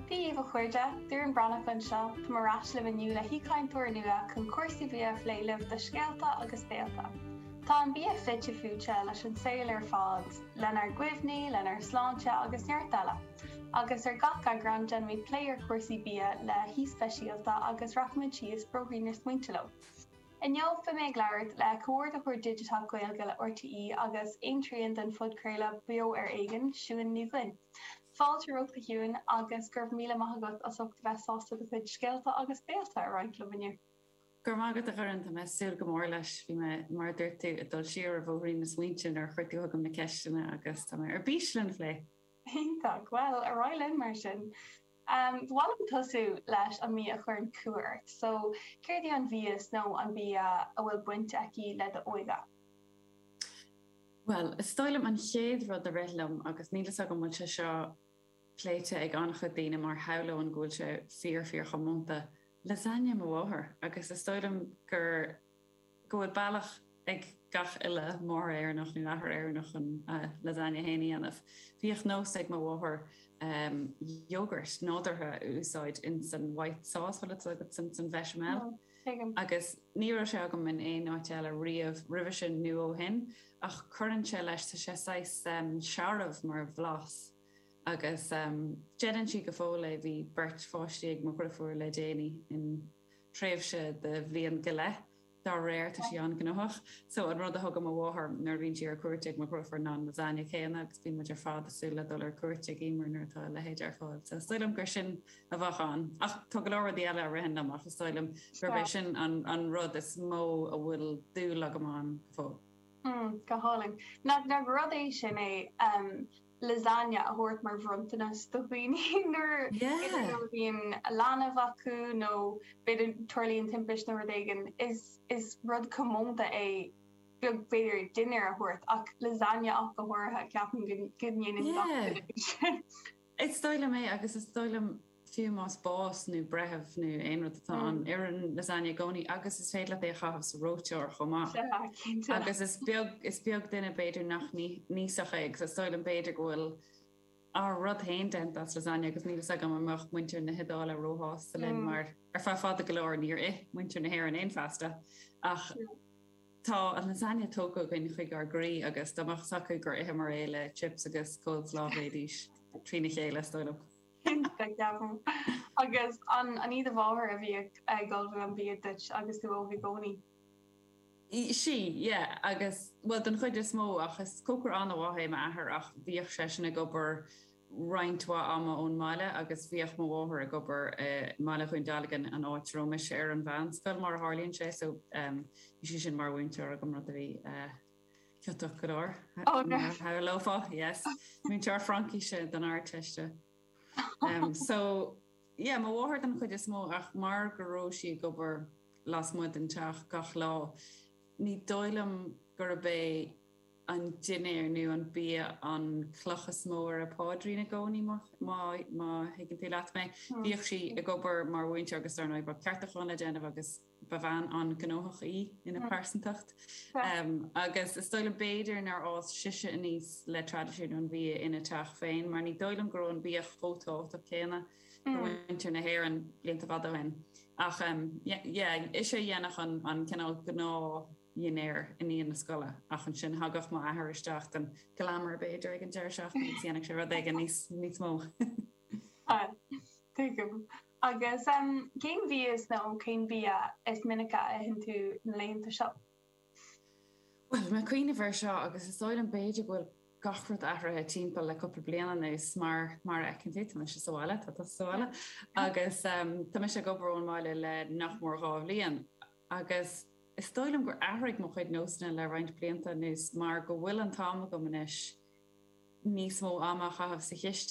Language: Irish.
Dé daoibh a chairde, Doireann Breathnach anseo, tá mé ar ais libh inniu le haoichainteoir nua chun cúrsaí bia a phlé libh do Scéalta agus Béilte. Tá an bia fite fuaite leis an saol ar fad, lenár gcuimhní, lenár sláinte agus neart eile, agus ar gach eagrán déanfaimid plé ar chúrsaí bia le haoi speisialta agus rachaimid síos bóithrín na smaointe leo. Inniu, beidh mé ag labhairt le Comhordaitheoir Digiteach Gaeilge le RTÉ agus aontrian den phodchraoladh Beo Ar Éigean, Siún Ní Dhuinn. Fáilte romhat a Shiúin, agus go raibh míle maith agat as ucht a bheith sásta do chuid scéalta agus béilte a roinnt liom inniu. Go raibh maith agat, a Dhoireann. Tá mé ag súil go mór leis. Bhí mé, mar a dúirt tú, ag dul siar ar bhóithrín na smaointe nuair a chuir tú chugam na ceisteanna agus tá mé ar bís lena phlé! Iontach! Bhuel, ar aghaidh linn mar sin. Ba mhaith liom tosú leis an mbia a chuireann cumha ort, so céard í an mhias nó an bia a bhfuil baint aici le d'óige? Bhuel, is dóigh liom an chéad rud a rith liom, agus níl fhios agam bhfuil sé seo pléite ag an-chuid daoine mar shamhlóinn go bhfuil sé fíor fíor chomónta, lasagne mo mháthair! Agus is dóigh liom gur. go bhfuil bealach ag gach uile mháthair Éireannach, nó athair Éireannach, chun a lasagne féin a dhéanamh. Bhíodh nós ag mo mháthair yogurt nádúrtha a úsáid in san white sauce, bhfuil 'fhios agat, san san bhechamel? Tuigim. Agus ní raibh sé agam in aon áit eile riamh roimhe sin nó ó shin, ach cuireann sé leis, tá sé saghas searbh mar bhlas. Agus déanann sí go fóill é, bhí beirt páistí ag mo dheirfiúr le déanaí in. tréimhse de bhliain go leith. Dá réir, tá sí an-ghnóthach. So, an rud a thugann mo mháthair nuair a bhíonn sí ar cuairt ag mo dheirfiúr ná an lasagne céanna agus bíonn muid ar fad ag súil le dul ar cuairt ag Eimear nuair atá a leithéid ar fáil. So, is dóigh liom gur sin a bheadh ann. Ach tá go leor rudaí eile a ritheann liom ach is dóigh liom gurb é sin an rud is mó a bhfuil dúil agam ann go fóill. Go hálainn. Nach rud é sin é? lasagne a thabhairt mar bhronntanas do dhaoine nuair a bhíonn leanbh acu nó b'fhéidir tarlaíonn timpist nó rud éigin. Is is rud comónta é b'fhéidir dinnéar a thabhairt ach lasagne ach go háirithe, ceapaim go ndéanann gach duine sin. Is dóigh liom é agus is dóigh liom. fiú más bás nó breitheamh nó aon rud atá ann, oireann lasagne i gcónaí agus is féidir leat é a chaitheamh sa reoiteoir chomh maith. Agus is beag, is beag duine b'fhéidir nach n-íosfadh é agus is dóigh liom b'fhéidir go bhfuil ár rud féin déanta as lasagne agus níl fhios agam an mbeadh muintir na hIodáile ró-shásta linn mar ar feadh fada go leor níor ith muintir na hÉireann aon phasta ach tá an lasagne tógtha againn chuig ár gcroí agus dá mbeadh a fhios acu gur itheamar é le chips agus coleslaw bheidís trína chéile is dóigh liom. Cinnte, ceapaim. Agus an í do mháthair a bhíodh ag ullmhú an bhia duit agus tú óg i gcónaí? Sea, yeah. Agus, bhuel, den chuid is mó, ach is cócaire an-mhaith é m'athair ach bhíodh seisean ag obair roinnt mhaith ama ón mbaile agus bhíodh mo mháthair ag obair i mBaile Dhún Dealgan, an áit a raibh mise ar an mheánscoil, mar a tharlaíonn sé, so bhí sí sin mar mhúinteoir agam, rud a bhí. Ciotach go leor, mar a shamhlófá, yes. Múinteoir Fraincíse don Ardteiste. So, yeah, mo mháthair don chuid is mó ach mar go raibh sí ag obair lasmuigh den teach gach lá, ní dóigh liom gurb é an dinnéar nó an bia an chloch is mó ar a páidrín i gcónaí, má thuigeann tú leat mé. Bhíodh sí ag obair mar mhúinteoir agus dar ndóigh, bheadh ceartúcháin le déanamh agus. Ba bhean an-ghnóthach í ina pearsantacht agus is dóigh liom b'fhéidir nár fhás sise aníos le traidisiún an bhia ina teach féin mar ní dóigh liom go raibh an bia chomh tábhachtach céanna do mhuintir na hÉireann blianta fada ó shin. Ach yeah, ise a dhéanfadh an cineál gnáthdhinnéar i ndiaidh na scoile ach ansin thagadh m'athair isteach don glamour b'fhéidir ag an deireadh seachtaine agus dhéanfadh sé rud éigin níos mó. Sea. Tuigim. Agus cén bhia is, nó cén bia is minice a itheann tú na laethanta seo? Bhuel, tá mé ag cuimhneamh air seo agus is dóigh liom, b'fhéidir go bhfuil gach rud athraithe timpeall le cúpla bliain anuas mar, mar a fheiceann tú, tá mise sa bhaile, tá tusa sa bhaile agus tá mise ag obair ón mbaile le nach mór dhá bhliain agus is dóigh liom gur athraigh mo chuid nósanna le roinnt blianta anuas mar go bhfuil an t-am agam anois níos mó ama a chaitheamh sa chistin.